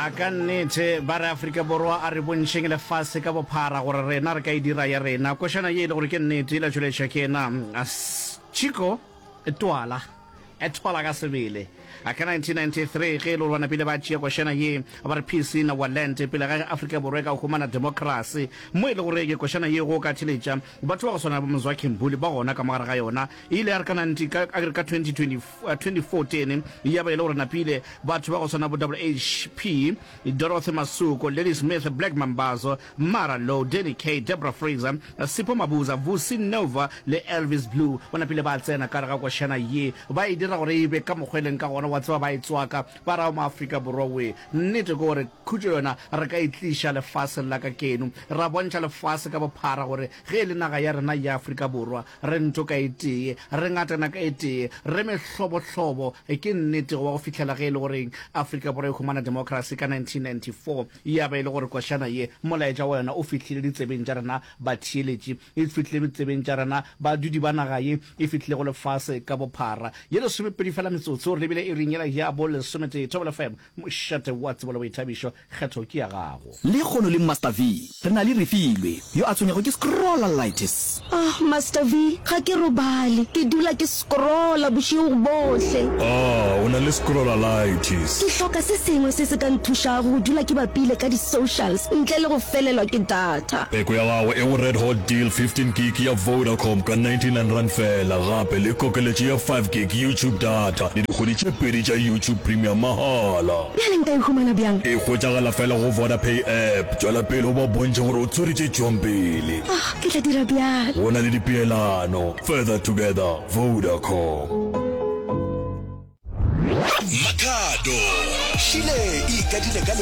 A ka nnete, ba re Afrika Borwa a re bontšheng lefase ka bophara gore rena re ka e dira ya rena. Košana ye e le gore ke nnete e la tšweletšwa ke yena Chico Twala Etwala ka sebele a ka 1993 ge e le gore ba napile ba tšea košana ye ba re peace in our land pele ga ge Afrika Borwa e ka humana democracy mo e le gore ke košana ye go ka theletša batho ba go swana le bo Mzwakhe Mbuli ba gona ka mogare ga yona e ile ya re ka 19 ka ka 2024 2014, ya ba e le gore napile batho ba go swana bo WHP, Dorothy Masuku, Ladysmith Black Mambazo, Mara Low, Danny Kaye, Debra Fraser, Sipho Mabuza, Vusi Nova le Elvis Blue ba napile ba tsena ka gare ga košana ye ba e dira gore e be ka mokgwa e leng ka gona, wa tseba ba e tswaka ba ra o mo Afrika Borwa we. Nnete ke gore khutšo yona re ka e tliša lefaseng la ka keno ra bontšha lefase ka bophara gore Ge e le naga ya rena ya Afrika Borwa, re ntho ka e tee, re ngatana ka e tee, re mehlobohlobo, ke nnete, go ba go fihlela ge e le gore Afrika Borwa e humana democracy ka 1994, ya ba e le gore košana ye, molaetša wa yona o fihlile ditsebeng tša rena batheeletši, e fihlile ditsebeng tša rena badudi ba naga ye, e fihlile go lefase ka bophara. Ye lesomepedi feela metsotso, re lebile iring yela ya bo lesometee. Thobela FM. Mošate wa tsebo le boithabišo, kgetho ke ya gago. Lehono le Master V, re na le Refilwe, yo a tshwenyago ke scrollalitis. Ahh Master V, ga ke robale, ke dula ke scrolla bošego bohle. Ahh o na le scrollalitis. Ke hloka se sengwe se se ka nthušago go dula ke bapile ka di socials ntle le go felelwa ke data. data. Peko ya gago e go Red Hot Deal 15 gig ya Vodacom ka 99 rand fela gape le kokeletšo ya 5 gig YouTube data le dikgwedi tše pedi tša YouTube Premium mahala. Bjale nka e humana bjang? E hwetšagala fela go Vodapay app. Tšwela pele o ba bontšhe gore o tswere tše tšwang pele. Oh, ke tla dira bjalo. Go na le dipeelano. Further together. Vodacom. Makhado, Shile e ikadile ka.